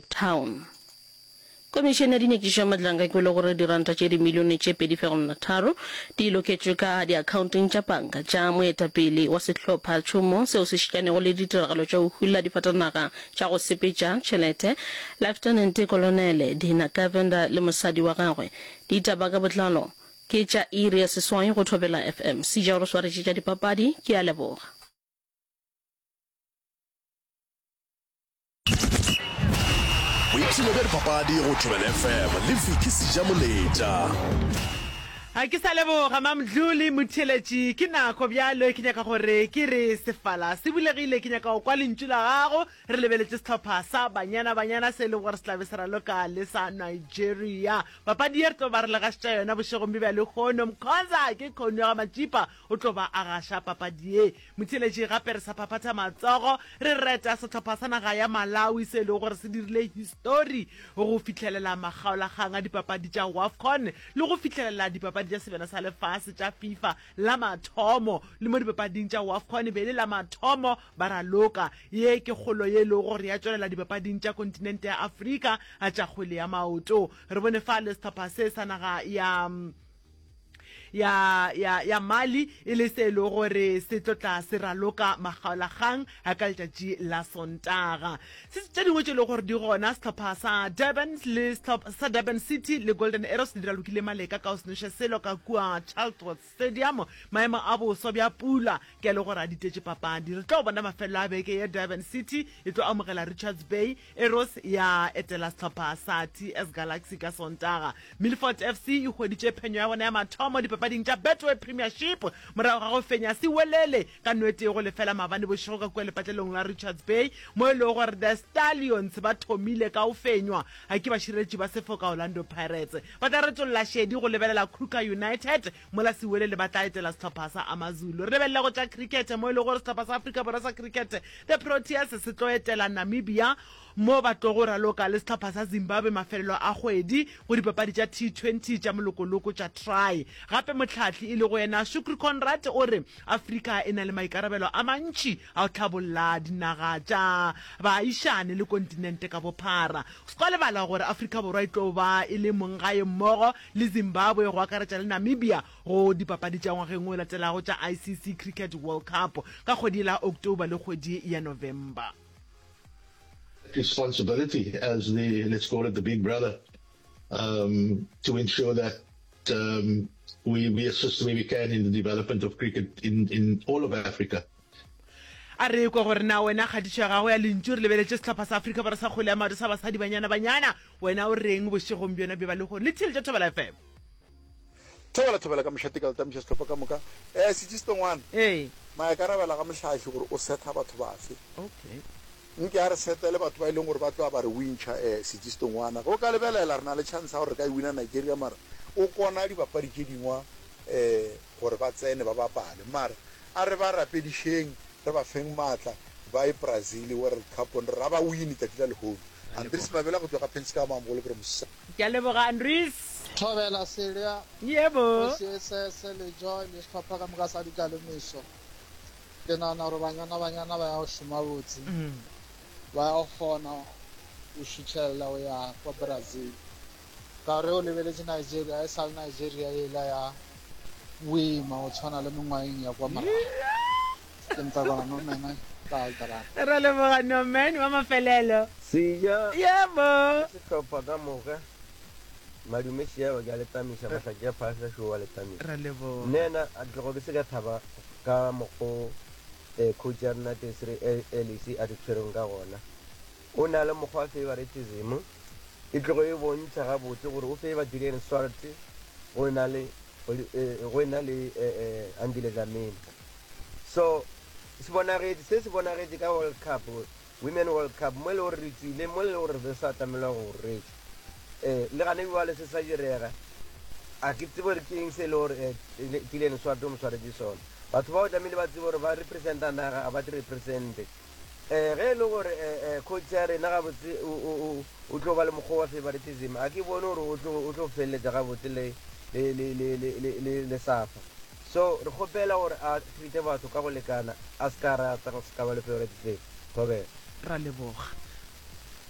Town. Komišene ya Dinyakišo ya Matlanka e kwele gore diranta tše dimilione tše pedi fegelwana tharo di loketšwe ka diakhaonteng tša panka tša moetapele wa sehlophacšomo seo se šikanego le ditiragalo tša go hula difatanaga tša go sepetša tšhelete Leftenente Kolonele Dina Govender le mosadi wa gagwe. Ditaba ka botlalo ke tša iri ya seswai go Thobela FM. Sija o re swaretše tša dipapadi. Ke a leboga. boipshino bja dipapadi go thobela fm le viki seja moletša ga ke sa leboga mamdluli motheletši ke nako bjalo ke nyaka gore ke re sefala se bulegile ke nyaka go kwa lentšu la gago re lebeletše setlhopha sa banyana banyana se e lego gore se tlabe se raloka le sa nigeria papadi ye re tlo ba re legašetša yona bošegong bjo bja lekgono mkhonza ke kgono ya ga matšipa O tlo ba a gaša papadi ye. Motheeletši gape re sa phaphatha matsogo re reta sehlopha sa naga ya Malawi se e lego gore se dirile histori go fihlelela makgaolakgang a dipapadi tša Wafcon le go fihlelela dipapadi tša sebjana sa lefase tša Fifa la mathomo le mo dipapading tša Wafcon e be e le la mathomo ba raloka. Ye ke kgolo ye e lego gore ya tšwelela dipapading tša kontinente ya Afrika a tša kgwele ya maoto. Re bone fale sehlopha se sa naga ya ya, ya, ya Mali, e le se e lego gore se tlo tla se raloka makgaolakgang a ka letšatši la Sontaga. Se tše dingwe tše e lego gore di gona, sehlopha sa Durban le sehlopha sa Durban City le Golden Arrows di ralokile maleka ka go senoša selo ka kua Childworth Stadium. Maemo a boswa bja pula ke a le gore a ditetše papadi. Re tlo bona mafelelo a beke ye Durban City e tlo amogela Richards Bay Arrows ya etela sehlopha sa TS Galaxy ka Sontaga. Milford FC e hweditše phenyo ya bona ya mathomo dipapading tša Betway Premiership morago ga go fenya Siwelele ka no e tee go lefela maabane bošego ka kua lepatlelong la Richards Bay mo e lego gore The Stallions ba thomile ka go fenywa ke bašireletši ba sefoka Orlando Pirates. Ba tla retolla šedi go lebelela Kruger United Mola Siwelele ba tla etela sehlopha sa AmaZulu. Re lebelele go tša cricket mo e lego gore sehlopha sa Afrika Borwa sa cricket, The Proteas, se tlo etela Namibia mo ba tlogo raloka le sehlopha sa Zimbabwe mafelelo a kgwedi go dipapadi tša T20 tša molokoloko tša Tri. Gape mohlahli e lego yena Shukri Conrad o re Afrika e na le maikarabelo a mantši A o tla bolla dinaga tša baagišane le kontinente ka bophara. O se ka wa lebala gore Afrika Borwa e tlo ba e le monggae mmogo le Zimbabwe, go akaretša le Namibia, go dipapadi tša ngwageng o latelago tša ICC Cricket World Cup ka kgwedi la October le kgwedi ya November. responsibility as the, let's call it the big brother, um, to ensure that um, we, we assist where we can in the development of cricket in, in all of Africa. A re ekwa gore na wena kgatišo ya gago ya lentšu re lebeletše sehlopha sa Afrika Borwa sa kgwele ya maoto sa basadi banyana banyana, wena o reng bošegong bjona bjo ba le go re? Lithile tša Thobela FM. Thobela Thobela ka mehla teka letamiša sehlopha ka moka. Eh Sitšisito ngwana, Ee. maikarabelo a ga Mohlahli gore o setha batho bafe. Okay. Nke a re setele batho ba e leng gore ba tloa ba re wintšha. Eh Sitšisito ngwana, ge o ka lebelela re na le chance ya gore re ka e wina Nigeria mara o kona dibapadi tše dingwa eh gore ba tsene ba bapale mara A re ba rapedišeng, re ba feng maatla, ba ye Brazil World Cup on re a ba win tšatši la lehono. Andries Mabela go tšwa ka Penska ya Maamogolo ke re mosss. Ke a leboga Andries. Thobela Selya, Yebo. Kgosi Esese le Joy le sehlopha ka moka sa dikalomiso. Ke nahana gore banyana banyana ba ya go šoma botse. Ba ya go kgona go šutšhelela go ya kwa Brazil. Ka re o lebeletše Nigeria e sa le Nigeria yela ya boima go tshwana le mengwageng ya kwa morago. Ke ntakwana Norman ka Altaran. Ra leboga Norman wa mafelelo. Seja Yebo! le sehlopha ka moka. Madume Seaba ke a le tamiša, Mahlatši a Phahla Show wa le tamiša. Ra leboga. Nena a tlogo ke se ka thaba ka mokgo Coach ya rena Desiree Ellis a re tshwereng ka gona. O na le mokgwa wa feivaretisimo. E tlogo e bontšha gabotse gore o feiva Julian Swart go e na le, go e na le Andile Dlamini. So, se bonagetše, se se bonagetše ka World Cup, Women World Cup, mo e lego gore re tšwile, mo e lego gore re be sa atamelwa go rwetša. Le gane bjale se sa direga. A ke tsebe gore ke eng se e lego gore Julian Swart o mo swaretše sona. Batho bao tlamehile ba tsebe gore ba representa naga, ga ba di represente. Ge e le gore coach ya rena gabotse o tlo ba le mokgwa wa favoritism, a ke bone gore o tlo feleletša gabotse le suffer. So re kgopela gore a treate batho ka go lekana, a se ka rata go se ka ba le favoritism. Thobela. Ra leboga.